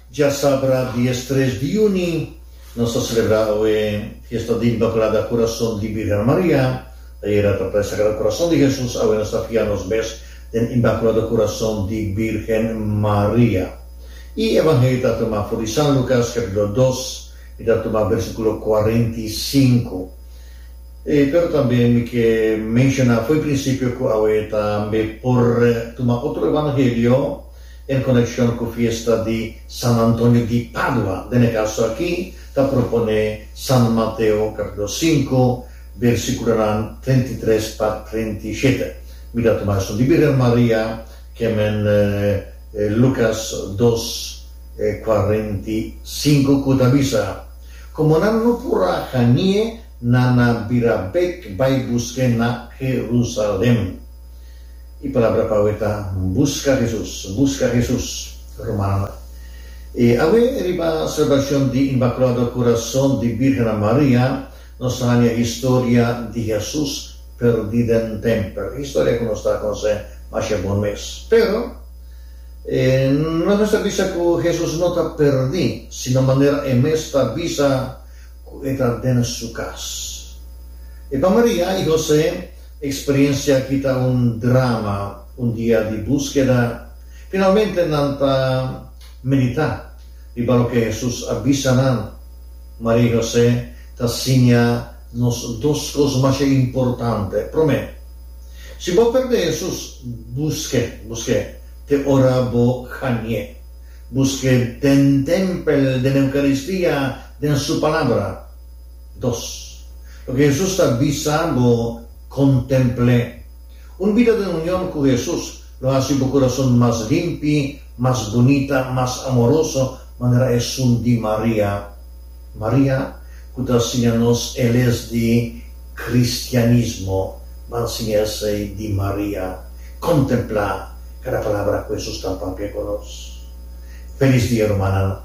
Djasabra dies tres di juni nos ta selebrá awe fiesta di Inmaculada Kurason di Bírgen Maria. Ayera trata di Sagrado Kurason di Hesus, awe nos ta fia nos mes den Inmaculado Kurason di Bírgen Maria. E Evangelio ta tumá for di San Lukas, capítulo dos, mi ta tumá bersíkulo kuarenta i sinku. E pero tambe mi ke menshoná fo'i prinsipio ku awe tambe por tuma otro evangelio en konekshon ku fiesta di San Antonio di Padua. Den e kaso aki ta proponé San Mateo kapítulo sinku bersíkulonan treinta i tres pa treinta i shete. Mi ta tuma esun di Birgen Maria kemen Lukas dos kuarenta i sinku ku ta bisa, Komo nan no por a hani'e, na na bira bek bai busk'é na Jerusalem. E palabra pa awe ta, Buska Hesus, buska Hesus, Romanonan. E awe, riba selebracion di Inmaculado Corazon di Birhennan Maria, nos haña historia di Hesus perdi den tempel. Historia cu nos ta conoce masha bon mes. Pero, e no nos ta bisa cu Hesus no ta perdi, sino manera e mes ta bisa, Cu e ta den su cas. E pa Maria y Jose, e experiencia aki ta un drama, un dia di buskeda. Finalmente nan ta medita riba loke Jesus a bisa nan. Maria y Jose ta siña nos dos cos masha importante. Prome, si bo perde Jesus, buske, buske te ora bo hanié. Buske den tempel, den Eucaristia. Den su palabra. Dos. Loke Hesus ta bisa bo kontempl'é. Un bida den union ku Hesus lo hasi bo kurason mas limpi, mas bunita, mas amoroso, manera esun di Maria. Maria ku ta siña nos e les di kristianismo, ban siña esei di Maria. Kontemplá kada palabra ku Hesus ta papia ku nos. Felis dia rumannan.